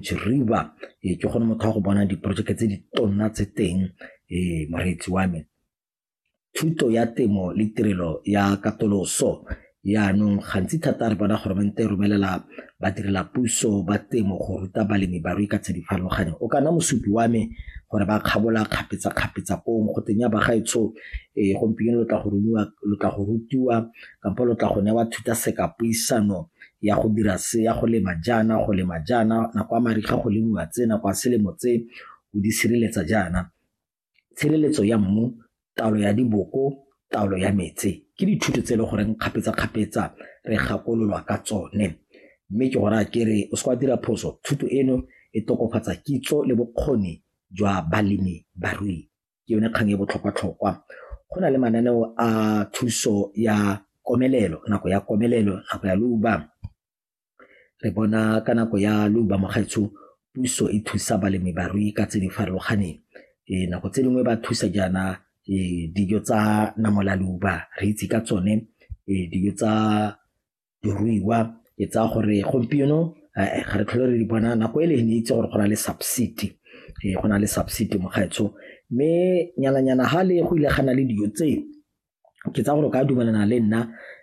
riba ee ke gone motho wa go bona diporojeke tse di tonna tse teng ee moreetsi wa me thuto ya temo le tirelo ya katoloso yaanong gantsi thata re bona goromente e romelela badirela puso ba temo go ruta balemi barui ka tse di farologaneng o ka nna mosupi wa me gore ba kgabola kgapetsa-kgapetsa pong go teng ya bagaetsho um ee, gompieno lo tla go rutiwa kampo lo tla go newa thuta seka puisano ya go dira se ya go lema jaana go lema jaana nako a mariga go lemiwa tse nako a selemo tse o di sireletsa jaana tshireletso ya mmu taolo ya diboko taolo ya metsi ke dithuto tse e le goreng kgapetsa-kgapetsa re gakololwa ka tsone mme ke gore a kere o se kwa dira phoso thuto eno e tokofatsa kitso le bokgoni jwa balemi barui ke yone kgang e botlhokwa-tlhokwa. Go na le mananeo a thuso ya komelelo, nako ya komelelo, nako ya leuba. Re bona ka nako ya leuba mo gaetsho puso e thusa balemi barui ka tse di farologaneng nako tse dingwe ba thusa jaana dijo tsa namolaloba re itse ka tsone dijo tsa diruiwa ke tsaya gore gompieno eh, ga re tlhole re di bona nako e le ne itse gore go na le subsidy eh, go na le subsidy mokgaitsho mme nyananyana ga le go ile ga na le dijo tseo ke tsa gore o ka dumelana le nna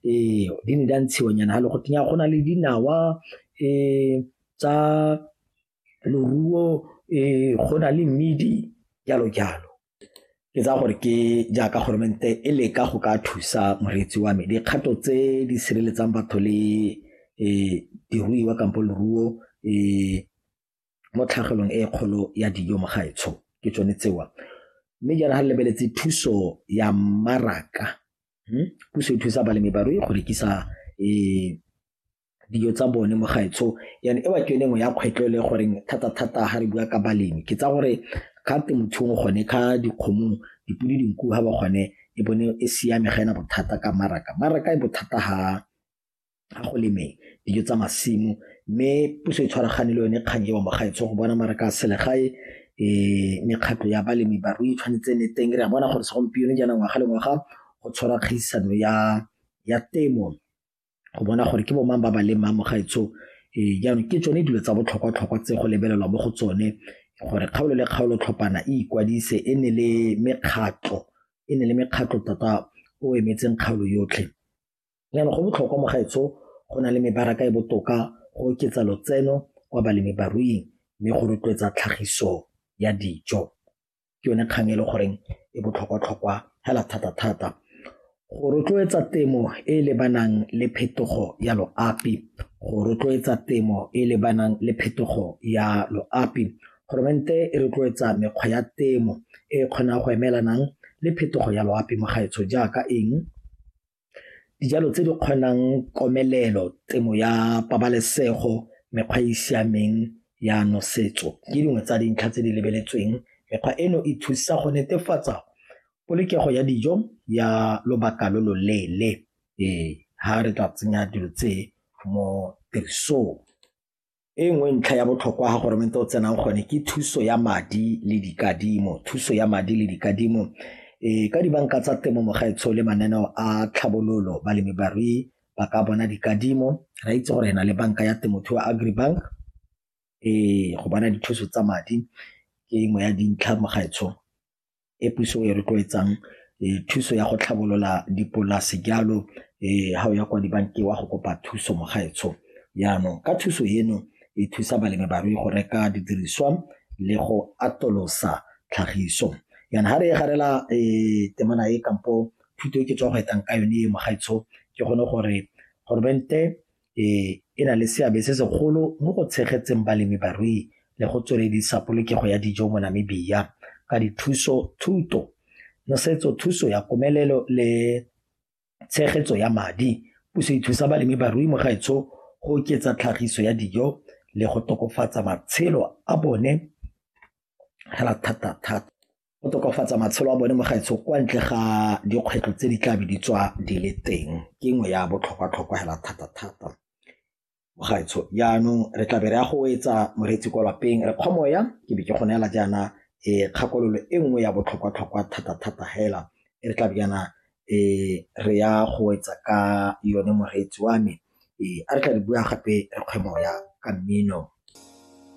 ee di ne di a ntshiwa nyana ga le go tenya go na le dinawa um tsa loruo um go na le mmidi jalo jalo ke tsaya gore ke jaaka goromente e leka go ka thusa moreetsi wa me dikgato tse di sireletsang batho le um diruiwa kampo leruo um mo tlhagelong e kgolo ya dijo mo gaetsho ke tsone tsewa mme jaana ga lebeletse thuso ya mmaraka hmm? puso e thusa balemi barui go rekisa um dijo tsa bone mo gaetsho yane e ba ke yone nngwe ya kgwetlho le goreng thata-thata ga re bua ka balemi ke tsa gore ga temothuong gone ka dikgomong dipodi dinku ga ba gone e bone e siame ga ena bothata ka maraka maraka e bothata ga ga go lemeng dijo tsa masimo mme puso e tshwaragane le yone kgang eo mo gaetsho go bona maraka a selegae um mekgatlho ya balemi barui e tshwanetse ne teng re a bona gore segompieno jaana ngwaga le ngwaga go tshwara kgaisano ya ya temo go bona gore ke bomang ba ba leng mamo gaetsho ee jaanong ke tsone dilo tsa botlhokwa-tlhokwa tse go lebelelwa mo go tsone gore kgaolo le kgaolo tlhopana e ikwadise e ne le mekgatlho e ne le mekgatlho tota o emetseng kgaolo yotlhe jaanong go botlhokwa mo gaetsho go na le mebaraka e botoka go oketsa lotseno kwa balemi baruing mme go rotloetsa tlhagiso ya dijo ke yone kgang e le goreng e botlhokwa-tlhokwa hela thata-thata go rotloetsa temo e e lebanang le phetogo ya loapi go rotloetsa temo e e lebanang le phetogo ya loapi goromente e rotloetsa mekgwa ya temo e kgonang go emelanang le phetogo ya loapi mo gaetsho jaaka eng Dijalo tse di kgonang komelelo, temo ya pabalesego, mekgwa e e siameng ya nosetso ke dingwe tsa dintlha tse di lebeletsweng. Mekgwa eno e thusa go netefatsa polokego ya dijo ya lobaka lo lo leele fa re ka tsenya dilo tse mo tirisong. e nngwe ntlha ya botlhokwa ga goromente o tsenang gone ke thuso ya madi le dikadimo thuso ya madi le dikadimo e ka dibanka tsa temo mogaetsho le mananeo a tlhabololo balemi barui ba ka bona dikadimo ra itse gore na le banka ya temothuo agribank e go bona dithuso tsa madi ke engwe ya dintlha mogaetsho e puso e rotloetsang thuso ya go tlhabolola dipolase jalo ga o ya kwa dibankeng wa go kopa thuso mo gaetsho jaanong ka thuso eno e thusa balemi barui go reka didiriswa le go atolosa tlhagiso yana ga re e garela temana e kampo thuto e ke tswa go etang ka yone e mo gaetsho ke gone gore goromente e e na le seabe se segolo mo go tshegetseng balemi barui le go tsweledisa polokego ya dijo mo Namibia ka dithuso thuto nosetso thuso ya komelelo le tshegetso ya madi puso e thusa balemi barui mo gaetsho go oketsa tlhagiso ya dijo le go tokafatsa matshelo a bone hela thata thata. go tokafatsa matshelo a bone mo gaetsho kwa ntle ga dikgwetlho tse di tla be di tswa di le teng ke nngwe ya botlhokwa-tlhokwa hela thata-thata mo gaetsho jaanong re tla be re ya go etsa moreetsi kwa lapeng re kgwamoya ke be ke go neela jaana e kgakololo e nngwe ya botlhokwa-tlhokwa thata-thata hela e re tla be jaana e re ya go etsa ka yone moreetsi wa me e a re tla re bua gape re kgwemoya ka mmino